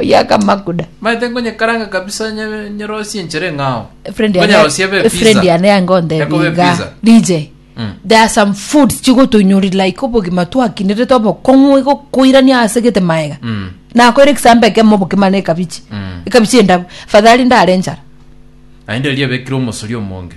oyakamakuda. Manyete nkonyekaranga kabisa onye nyerosie enchera eng'ao. A friend yane- Nkonyerosie ebe a friend yane pizza. yango nde Ekobe biga. pizza. DJ, Mm. there are some foods chigotoinyori like obogima twakinerete obokong'u igokoirania ase gete maega Mm. nakoire ekisambo ekemo obokima na ekabichi Mm. ekabichi endabu fadhali ndare enchara Naende erio ebekire omosori omonge.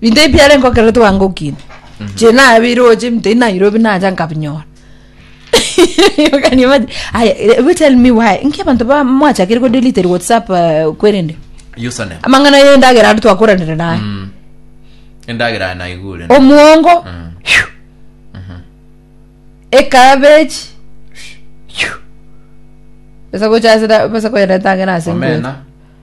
Binto ebi biare nkokera twangokine nche nabe roche binto ebi nairobi nacha nkabinyora You can imagine. Aya, eh, you tell me why nki abanto ba- mwachakire ko delete whatsapp eh, kwerende username amang'ana yendagera ari twakoranire naye Mm. endagera naigure omuongo Mm. phew, ekabeji phew. besa gochasira besa koyereta ang'ana ase nguru. omena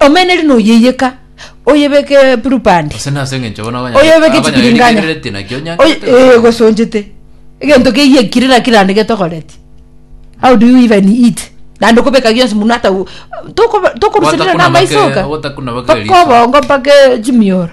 Omeneri noyeyeka, oyebeke eburubandi, Gose nase engencho bono abanyene oyebeke abanyene chibiringanya, rigereretie nakio oye- onyanchete ee, gose ogosonchete, egento keyekire naki rande getogoretie. How do you even eat? Naende okobeka gionsi munwe ata u- tokoba- tokoruseria Ogotakuna namaiso make- oka, ogotakuna make mpaka riso. obongo mpaka chimioro.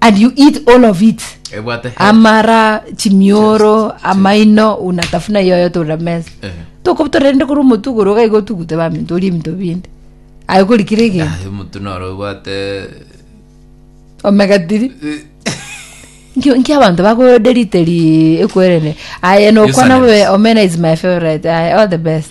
and you eat all of it ebwate health. amara chimioro amaino unatafuna yoyo tora mesa Ehe. tokotorende kuri omotugoro ogaiga otugute baminto orie ebinto binde aye korikire egento Ah, omonto noro obwate omega tiri Nkio- nki abanto bakoderiteri ekwerene aye nokwana Useless. bobe omena is my favorite aye all the best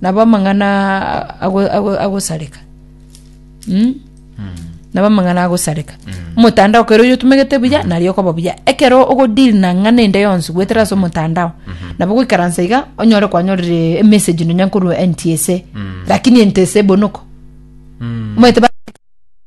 Nabo amang'ana agosareka, nabo amang'ana agosareka. Omotandao kero oyotomegete buya, nario okoba buya. Ekero ogodeal na ng'ana ende yonsi goetera ase omotandao, nabo goikaransa iga, onyore kwanyorire emessage nonya nkorwa NTSA, lakini NTSA bono ko. Omanyete ba.